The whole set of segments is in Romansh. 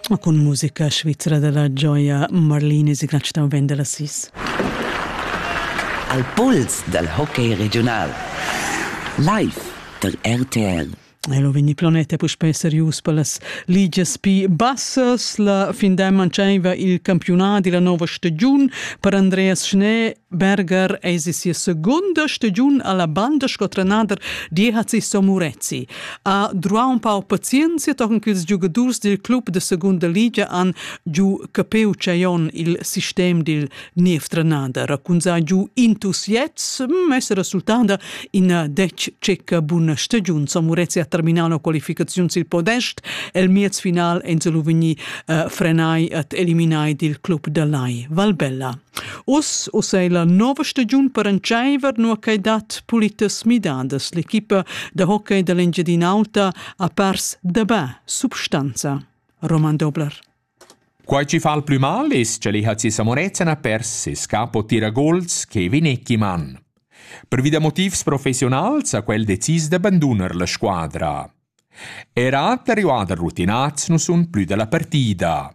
Ma cun musica svizra dalla gioia Marlini Signatsch da vender la sis. Al pols dal hockey regional. Live der RTL. Elo vegni planeta puspei serius per las ligias pi bassas. La fin da manchaiva il campiunat della nova stagiun per Andreas Schnee Berger es in sia seguonda stagiun a la banda sco trenader d'Ihazi Somurezi. Ha druà ün pau pazienzia tochen ch'ils giugadurs dil club da segunda ligia han giu capiu ch'eon il sistem dil niev trenader, raquinzà giu entusiasts, mess resultada ina dec cecca buna stagiun. Somurezi ha terminau la qualificaziun sil podest, el miez final ensi lu vegni uh, frenai et eliminai dil club da Lai Valbella. Uss uss è la nova stagiun per entscheiver nua ch'ei dat pulitas midadas. L'equipa da hockey da l'Engiadin'Alta ha pers dabà substanza. Roman Dobler. Quai ci fa il plü mal es cha l'IHC Samorezzan ha pers ses capo tiragols che Vinecchi Mann. Pervi da motivs professionals ha quel decis d'abandunar la squadra. Era da arrivada rutinats nu sun plü da la partida.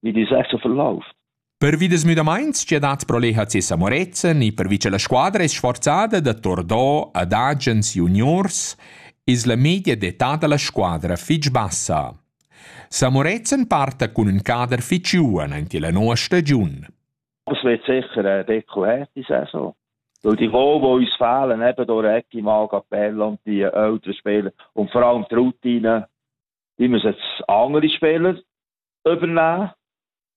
It is act of love. Pervi des müdamaints che dat pro l'EHC Samorezen e pervi che la squadra è sforzada da Tordò ad agens juniors es la media d'età da la squadra fich bassa. Samorezen parta cun ün cader fich giuven ante la noa stagiun. Das wird sicher ein Deckel her, die Saison. Weil die wo, wo uns fehlen, eben durch Ecki, Magapella und die älteren Spieler und vor allem die Routine, die müssen jetzt andere spielen. übeln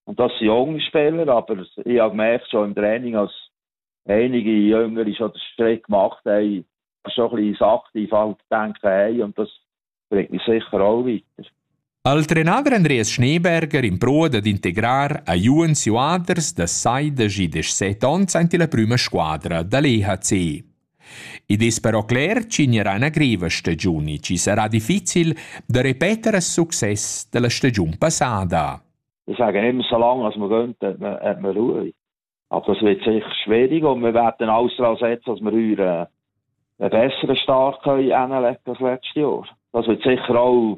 das Jungspieler, aber ich habe gemerkt, schon im Training, als einige Jünger ist schon den Strick gemacht haben, schon ein bisschen sachlich halt denken haben und das bringt mich sicher auch weiter. Al trenader Andreas Schneeberger in proa dad integrar a Juens Juaders da sai da gi de set onns ante la prüma squadra da l'EHC. Id es però cler ch'ignorà üna griva stagiun e chi sarà difficil da repeter a success da la stagiun passada. Ich sage nicht mehr so lange, als wir gehen, hat man, hat man Ruhe. Aber es wird sicher schwieriger und wir werden alles daran setzen, dass wir unseren einen besseren Start können hinlegen als letztes Jahr. Das wird sicher auch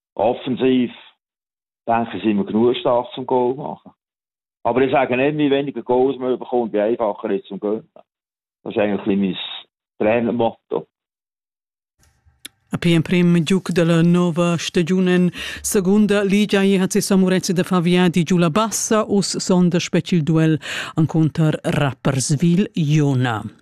offensiv denke sind wir genug stark zum Goal machen. Aber ich sage nicht, wie weniger Goals man bekommt, wie einfacher ist zum Gönnen. Das ist eigentlich mein Trainermotto. Appena prem giuc dalla nova stagiun en segunda ligia e hat si Samurezi da Favia di giù la bassa us sonda specie il duel ancunter Rapperswil Iona.